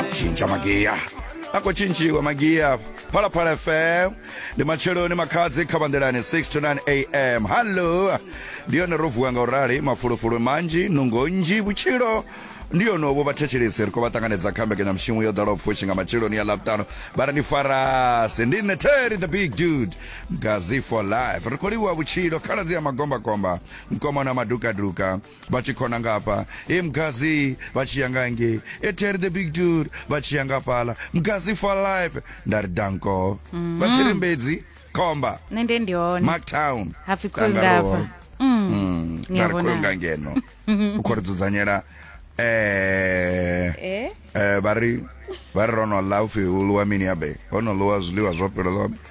chinja magiya akho tshintshiwe magiya phalaphala fm ndi matsheloni makhadzi kha vanḓelani 6 to 9 am hallo ndi yone ro vuwa nga u rali mafulufulu manzhi nungo nnzhi vhutshilo ndi yonovho vhathetshelesi ri khou vha ṱanganedza kha mbekanyamushumo yo ḓalaho pfushi nga matsheloni ya ḽavhutano vha ri ndi farasi ndi nṋe terry the big dude gazi for life ri khou livhuwa vhutshilo khaladzi ya magombakomba mkomana madukaduka vha tshi khona ngafha e mgazi vha tshi ya nga nge e terry the big dude vha tshi ya ngafhala mgazi for life nda ri danko mm. vha thiri mbedzi khomba nṋe nde ndi hone marktown hapfi khoyo ngafha mm. mm. nda ri khoyo nga ngeno u khou ri dzudzanyela eh, eh? eh vha ri vha ri ro no ḽa upfi u ḽiwa mini yabe ho no ḽiwa zwiḽiwa zwo fhelelaho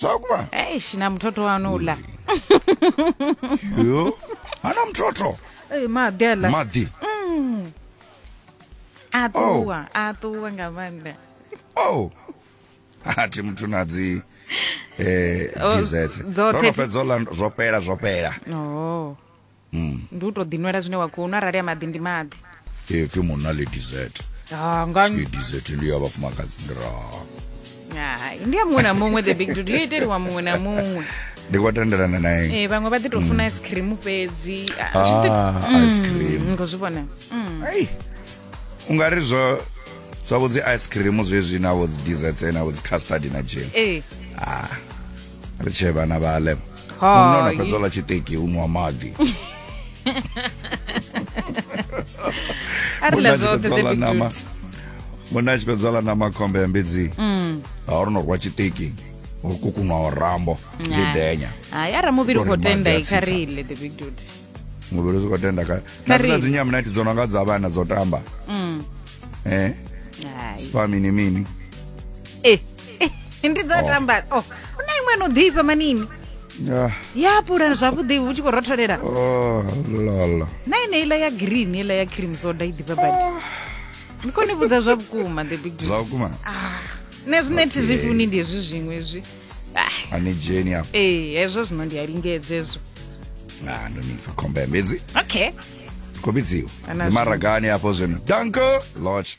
zvakuma eish namuthotho wani ula yo ana mthotho Ei, magela maḓi a ṱuwa a ṱuwa nga maanḓa oh athi muthu na dzi eh Oh, desserts dzoṱhe ro no dzi- fhedza u ḽa zwo fhela zwo fhela o ndi u to ḓinwela zwine wa khou nwa arali a maḓi ndi maḓi ipfi munna ḽi dizete ha nga i dizete ndi ya vhafumakadzi ndi ra hai ndi ya muṅwe na muṅwe the big dude yo iteliwa muṅwe na muṅwe ndi khou tendelana na ene Eh, vhaṅwe vha ḓi to funa ice cream fhedzi Ah, zwi ḓi- ah ice cream Mm, ngo zwi vhona Mm. ai u nga ri zwo zwavho dzi ice cream zwezwi navho dzi dizete navho dzi custard na jam Eh, ah ri tshee vhana vha ḽe munna ona fhedza ḽa tshiṱeki u nwa maḓi munna a tshi fhedza ḽa nama munna a tshi fhedza ḽa nama khombe ya mbidzi mm. a uri no rwa tshiṱeki uri kukunwa o rambo ndi denya hayi ara muvhili u khou tenda i kha ri ile the big dude muvhili zwi khou tenda kha na dzina dzi nyamunati dzo no nga dza vhana dzo tamba mm. eh spa mini mini eh ndi dzo tamba oh una iṅwe no ḓifha manini Ah, ya pula zwavhuḓi vhu tshi khou rotholela oh, lala. na ine iḽa ya green iḽa ya cream soda i ḓifha badi ndi khou ni vhudza zwa vhukuma the big Zwa vhukuma. nṋe zwine thi zwi funi ndi hezwi zwiṅwe zwi Ah, Ani dzheni hafha. ee hezwo zwino ndi a lingedza hezwo Ah, ndo ni pfa khombe mbedzi. okay Khombedziwa. Ana Ndi maragani hafho zwino. Danko Lodge.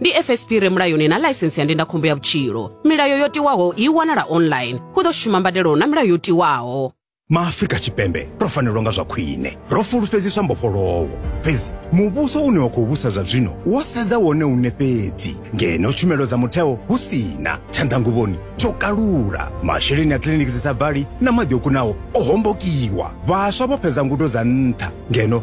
ndi fsp re mulayoni na ḽaisensi ya ndindakhombo ya vhutshilo milayo yo tiwaho i wanala online hu ḓo shuma mbadelo na milayo yo tiwaho maafrika tshipembe ro fanelwa nga zwa khwine ro fulufhedziswa mbofholowo fhedzi muvhuso une wa khou vhusa zwa zwino wo sedza wone une fhedzi ngeno tshumelo dza mutheo hu sina tshanḓanguvhoni tsho kalula masheleni a kiliniki dzi sa bvali na maḓi o kunaho o hombokiwa vhaswa vho fhedza ngudo dza nṱha ngeno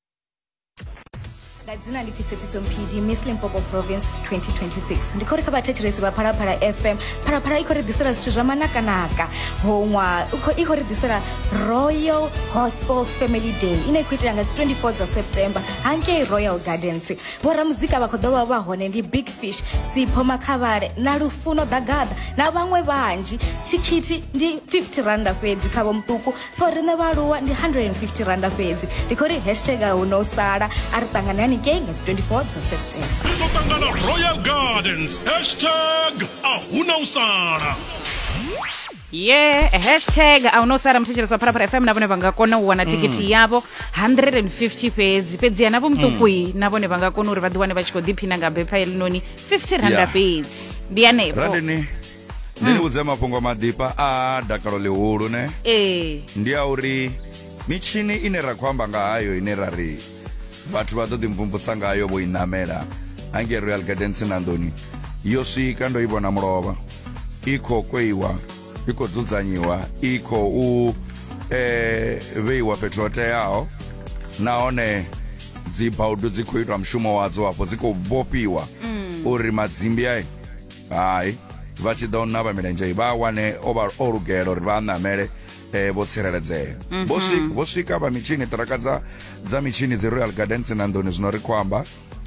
nga dzina ḽi pfisepfiso mphidi miss limpopo province 2026 ndi khou ri kha vhathetshelesi vha phalaphala fm phalaphala i khou ri ḓisela zwithu zwa manakanaka hoṅwa i khou ri ḓisela royal gospel family day ine i khou itela nga dzi 24 dza september hangei royal gardens vhoramuzika vha khou ḓo vha vha hone ndi big fish sipho makhavhale na lufuno ḓagaḓa na vhaṅwe vhanzhi thikhithi ndi 50 randa fhedzi kha vho muṱuku for riṋe vhaaluwa ndi 150 randa fhedzi ndi khou ri hashtag a hu no sala a ri ṱangane haningei nga dzi 24 dza september ri ḓo ṱangana royal gardens hashtag a hu na u sala ye hashtag a no sara muthetshelesi wa pharapara fm na vhone vha nga kona u wana thikhithi yavho 150 fhedzi fhedziha navho muṱukui na vhone vha nga kona uri vha ḓiwane vha tshi khou ḓiphina nga bepha elinoni 50 randa Yeah. fhedzi ndi hanefho Randini ndi ni vhudze mafhungo a maḓifha a dakalo ḽihulu ne ee ndi a uri mitshini ine ra khou amba nga hayo ine ra ri vhathu vha ḓo ḓimvumvusa ngayo vho i ṋamela hange royal gardens na nḓoni yo swika ndo i vhona mulovha i khou kweiwa i khou dzudzanyiwa i khou eh, vheiwa fhethu ho teaho nahone dzibaudu dzi khou itwa mushumo wadzo hafho dzi khou vhofhiwa uri madzimbi ayi hai vha tshi ḓo navha milenzhe vha wane o vha o lugela uri vha ṋamele eh, vho tsireledzea mhm. vho swika vho swika vha mitshini ṱiraka dza dza mitshini dzi royal gardens na nḓuni zwino ri khou amba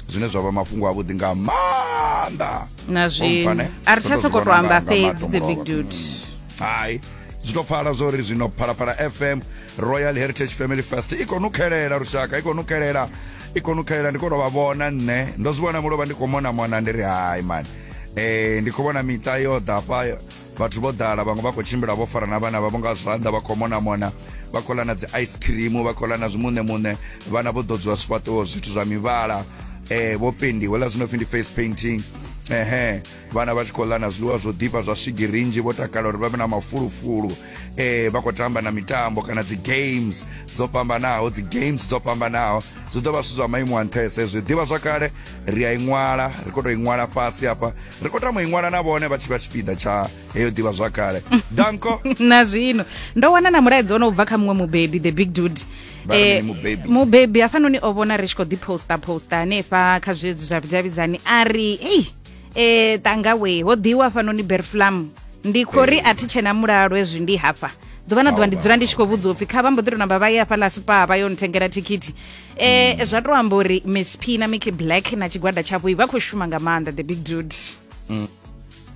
zwine zwa vha mafhungo avhuḓi nga maanḓa na zwi a ri tsha sokou tou amba fhedzi the big dude mm. hai zwi to pfala zwo ri zwino phalaphala fm royal heritage family fest i khou nukhelela lushaka i khou nukhelela i kona u khalela ndi kona vha vhona nṋe ndo zwi vhona mulovha ndi khou mona mona ndi ri hai mani eh ndi khou vhona miṱa yo ḓa fha vhathu vho ḓala vhaṅwe vha khou tshimbila vho fara na vhana vhavho nga zwanḓa vha khou mona mona vha khou ḽa na dzi ice cream vha khou ḽa na zwimuṋe muṋe vhana vho ḓodziwa zwifhaṱuwo zwithu zwa mivhala eh vho pendiwa ḽa zwino pfhi ndi face painting ehe vhana vha tshi khou ḽa na zwiḽiwa zwo ḓifha zwa swigiri nnzhi vho takala uri vha vhe na mafulufulu eh vha khou tamba na mitambo kana dzi games dzo fhambanaho dzi games dzo fhambanaho zwi ḓo vha zwithu zwa maimo a nṱhesa hezwi ḓivha zwakale ri a i ṅwala ri khou tou i ṅwala fhasi hafha ri khou tama i ṅwala na vhone vha tshi vha tshipiḓa tsha heyo ḓivha zwakale danko na zwino ndo wana na mulaedza ono bva kha muṅwe mubebi the big dude Vha ri Eh, mini mubebi? mubebi hafhanoni o vhona ri tshi khou ḓi posta posta hanefha kha zwezwi zwa vhudavhidzani a ri ei e tanga we ho ḓiwa fanoni berflam ndi khou ri a thi tshena mulalo hezwi ndi hafha ḓuvha na ḓuvha ndi dzula ndi tshi khou vhudzwa upfi kha vha mbo ḓi to namba vha ye hafhaḽa spa vha yo nthengela thikhithi um zwa to amba uri miss p na mickey black na tshigwada tshavho i vha khou shuma nga maanḓa the big dude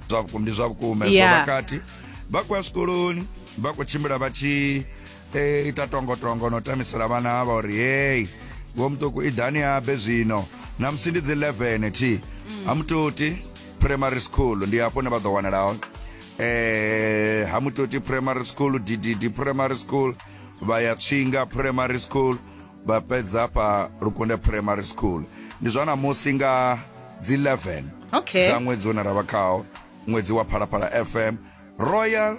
zwa vhukuma ndi zwa vhukuma hezwo Yeah. vhakati vha khou ya zwikoloni vha khou tshimbila vha tshi e ita tongotongo no tamisela vhana avha uri hei vho muṱuku i ḓani habe zwino na musi ndi dzi 11 thi ha mutoti primary school ndi hafho ne vha ḓo wanala hone eh ha mutoti primary school ddd primary school vha ya tswinga primary school vha fhedza hafha lukunde primary school ndi zwa namusi nga dzi 11 Okay. dza ṅwedzi une ra vha khawo ṅwedzi wa phalaphala fm royal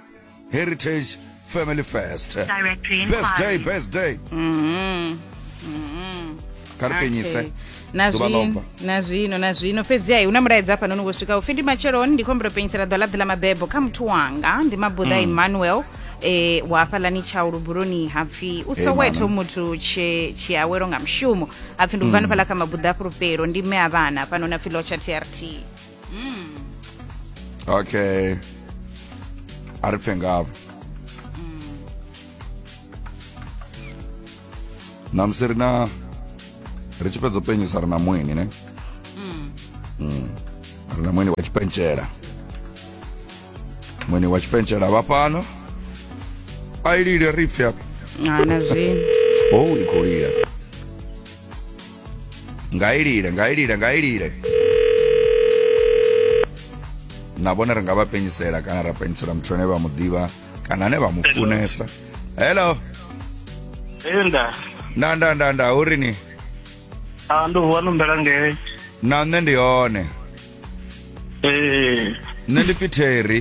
heritage family first Directory best day inquiry. best day Mhm. Mhm. kha ri penyise Okay. na Ḓuvha ḽo bva. zwino na zwino na zwino fhedzi ai una mulaedza hafha nono voswika upfi ndi matsheloni ndi khombela u penyisela ḓwa laḓi ḽa mabebo kha muthu wanga ndi mabuḓa Mm. emmanuel e wa hafhaḽani tshau lubuloni hapfi u Hey, soweto mama. muthu tshe tshiawelo nga mushumo hapfi ndi ubva Mm. hanefhaḽa kha mabuḓa a fhulufhelo ndi mme a vhana hafhanoni apfi lotsha trt mm. okay a ri pfe ngavho mm. namusi ri na ri tshi fhedza u penyisa ri na mueni ne mm. mm. ri na mueni wa tshipentshela mueni wa tshipentshela vha fhano a i lile ri pfe hana zwi oh i khou lila nga i lile nga i lile nga i lile na vhone ri nga vha penyisela kana ra penyisela muthu ane vha mu ḓivha kana ane vha mu funesa hello enda nda nda nda nda u ri ni a ndo vuwa no mbela ngei na nṋe ndi hone ee nṋe ndi pfi terry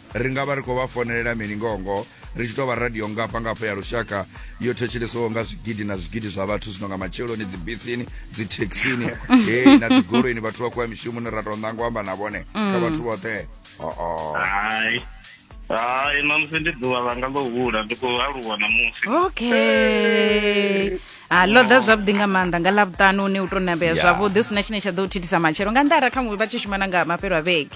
ri nga vha ri khou vha fonelela mini ngoho-ngoho ri tshi tou vha radio ngafha ngafha ya lushaka yo thetshelesiwaho nga zwigidi na zwigidi zwa vhathu zwino nga matsheloni dzibisini dzithekhisini hei na dzigoloini vhathu vha khou ya mishumoni ra tou ṋanga u amba na vhone kha mm. vhathu vhoṱhe oo hai hai ṋamusi ndi ḓuvha langa ḽo hula ndi khou aluwa ṋamusi okay ha ḽo ḓa zwavhuḓi nga maanḓa nga ḽavhuṱanu une u tou nambea zwavhuḓi hu si na tshine tsha ḓo u thithisa matshelo nga nnḓa ara kha muṅwe vha tshi shuma na nga mafhelo a vhege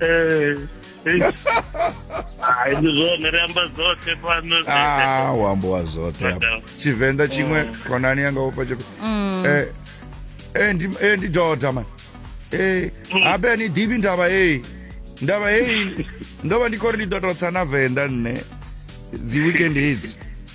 Eh, eh. Hai, ndi zwone ri amba dzoṱhe fhano Ah, u ambiwa zwoṱhe hapa Madam. tshivenḓa tshiṅwe khonani yanga u pfa tshifhe Eh, eh, ndi- eh, ndi doda man Eh, habe a ni ḓivhi ndavha heyi ndavha heyi ndo vha ndi khou ri ndi ḓo tou tsa na venḓa nṋe dzi weekend hedzi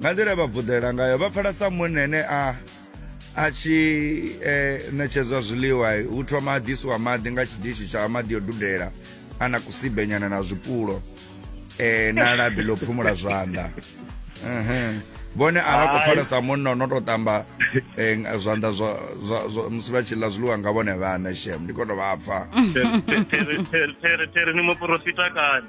nga nḓila ye vha vuḓela ngayo vha pfala sa munna ene a a tshi eh, ṋetshedzwa zwiḽiwa hu thoma a ḓisiwa maḓi nga tshidishi tsha maḓi yo dudela a na kusibenyana na zwipulo eh, na labi ḽo phumula zwanḓa vhone a vha khou pfala sa munna o no tou ṱamba eh, zwanḓa musi vha tshi ḽa zwiḽiwa nga vhone vhaṋe shem ndi khou tou vha pfa tere ni muporofita kani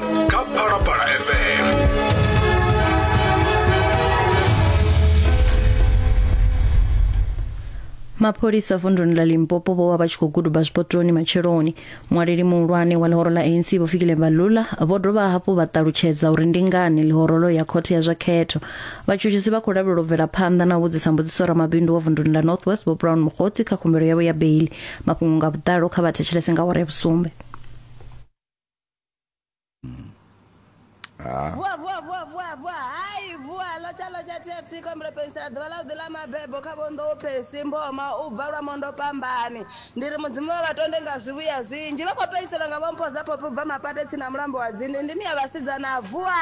kha phalaphala fm mapholisa vunduni la limpopo vho vha vha tshi khou guduba zwipotoni matsheloni mualeli muhulwane wa ḽihoro ḽa anc vho fikile balula vho dovha hafhu vha ṱalutshedza uri ndi ngani ḽihorolo ya khothe ya zwa khetho vhatshutshisi vha khou lavhelela u bvela phanḓa na u vhudzisa mbudziso ramabindu wa vunduni ḽa north west vho brown mukgotsi kha khumbelo yavho ya beili mafhungo nga vhuḓalo kha vha thetshelese nga awara ya vhusumbe vuwa vuwa vuwa vuwa vuwa hai vuwa lotsha lotsha tfc khombelo pensela ḓuvha ḽa u ḓi ḽa mabebo kha vhonḓo u phesi mboma u bva lwa mondo pambani ndi ri mudzimu wa vhatonde nga zwivhuya zwinzhi vha khou penselwa nga vhompho dza phophi u bva mapate tsini na mulambo wa dzinde ndimi ya vhasidzana vuwa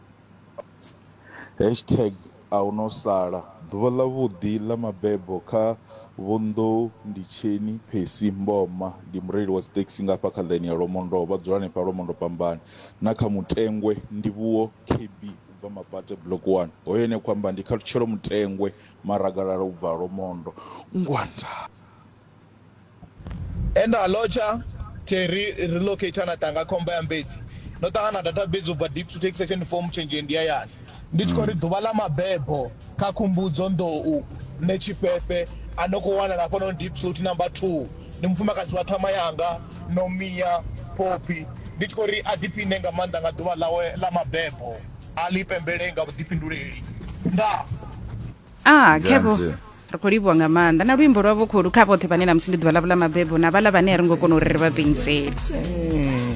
Hashtag A hu no sala. Ḓuvha ḽavhuḓi ḽa mabebo kha Vho Nḓou Ndi Tsheni Percy Mboma ndi mureili wa dzithekhisi nga hafha kha ḽaini ya Lwomondou vha dzula hanefha Lwomondo Pambani na kha Mutengwe Ndivhuwo KB u bva Mapate Block one hoyo ane a khou amba ndi Khathutshelo Mutengwe Maragalala u bva Lwomondo Ngwanda He nda lotsha the ri relocator na tanga khomba ya mbedzi ndo ṱangana data base u bva deep to take second form tshenzhe ndi ya yani ndi tshi khou ri ḓuvha ḽa mabebo kha khumbudzo nḓou nṋe tshifhefe a no khou wanala hafha no deep suit number 2 ndi mufumakadzi wa ṱhama yanga no miya phophi ndi tshi khou ri a ḓiphiṋe nga maanḓa nga ḓuvha ḽawe ḽa mabebo a ḽi pembele nga vhuḓifhinduleli nda Ah, Khevho, Nzanzi. ri khou livhuwa nga maanḓa na luimbo lwa vhukhulu kha vhoṱhe vhane na musi ndi ḓuvha ḽavho ḽa mabebo na vhala vhane a ri ngo kona uri ri vha penisele